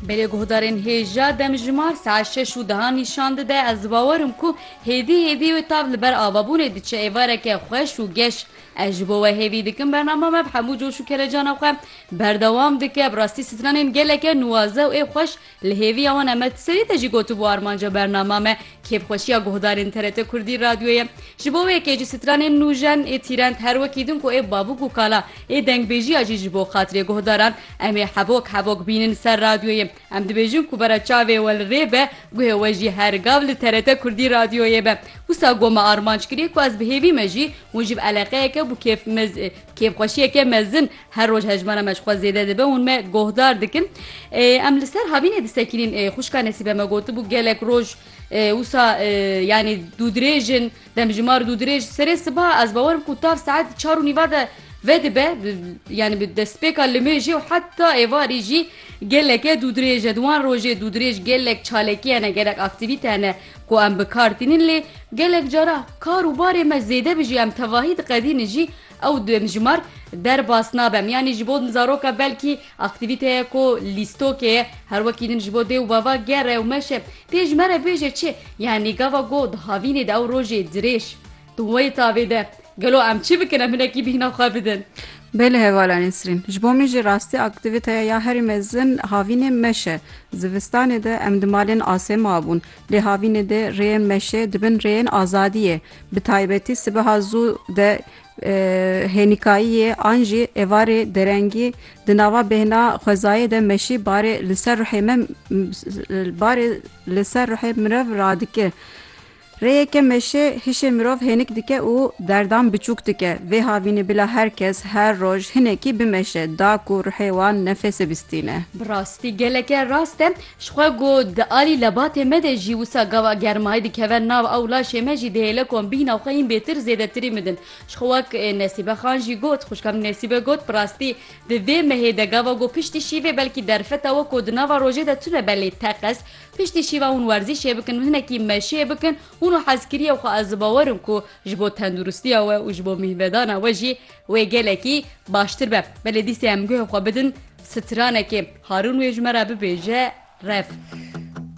Belê guhdarên hêja demjimar saet şeş û dehan nîşan dide, ez dibawer im ku hêdî hêdî wê tav li ber avabûnê diçe êvareke xweş û geş. Ez ji bo we hêvî dikim bernama me bi hemû coş û kelecana xwe berdewam dike, bi rastî stranên geleke nuwaze û ê xweş Li hêviya wan em di serê de jî gotibû armanca bernama me kêfxweşiya guhdarên TRT Kurdî Radyoyê ye. Ji bo wê kêjî stranên nûjen ê tîrend her wekî din ku ê babûk û kala ê dengbêjiya jî ji bo xatirê guhdaran em ê hevok hevok bînin ser radyoyê. Em dibêjin ku vera çavê we li rê be guhê we jî her gav li TRT Kurdî Radyoyê be. Wisa got me armanc kirî ku ez bi hêvî me jî hûn ji bi eleqeyeke bû kêf kêfxweşiyeke mezin Her roj hejmara me ji xwe zêde dibe hûn me gohdar dikin. Em li ser havînê disekînîn xwişka Nesîbe me gotibû gelek roj wisa yanî dûdirêjin demjimar dûdirêj serê siba ez bawerim ku tav saet çar û nîva de vedibe yanî bi destpêka li mêjê û heta êvarî jî geleke dûdirêje di wan rojê dûdirêj gelek çalekî hene gelek aktîvîte hene ku em bi kar tînin lê gelek cara kar û barê me zêde bijî em tevahî diqedînin jî Ew demjimar derbas nabe. Miyanî ji bo din zaroka belkî aktîvîteye ku lîstokê ye, her wekî din ji bo dê û bava gere û meşe. Pê ji me re bêje çi? Yanî gava ku di havînê de ew rojê dirêj di wê tavê de. Gelo em çi bikin? Em hinekî bîhna xwe bidin. Bê li hevala Nesrîn. Ji bo min jî rastî aktîvîteye ya herî mezin havînê meşe. Zivistanê de em di malên asê mabûn. Lê havînê de rêyên meşê dibin rêyên azadiyê. Bi taybetî sibeha zû de hênîkayiyê an jî êvarê derengî di nava bêhna xwezayê de meşî barê li ser ruhê me barê li ser ruhê mirov radike. Rêyeke meşê hişê mirov hênik dike û derdan biçûk dike. Vê havînê bila her kes her roj hinekî bimeşe da ku ruhê wan nefêse bistîne. Bi rastî geleke rast e. Ji xwe ku di alî lebatê me de jî wisa gava germayî dikeve nav ew laşê me jî dihêle ku em bîhna xwe hîn bêtir zêdetirî midin. Ji xwe wek Nesîbe Xan jî got, Xwişka min Nesîbe got, Bi rastî di vê mehê de gava ku piştî şîvê belkî derfeta we ku di nava rojê de tune be lê teqez piştî şîva hûn werzîşê bikin, hinekî meşê bikin hûno hez kiriye xwe ez dibawer im ku ji bo tenduristiya we û ji bo mîhvedana we jî wê gelekî baştir be. Belê dîsê em guhê xwe bidin. Stranekê, Harûn wê ji me re bibêje, rev.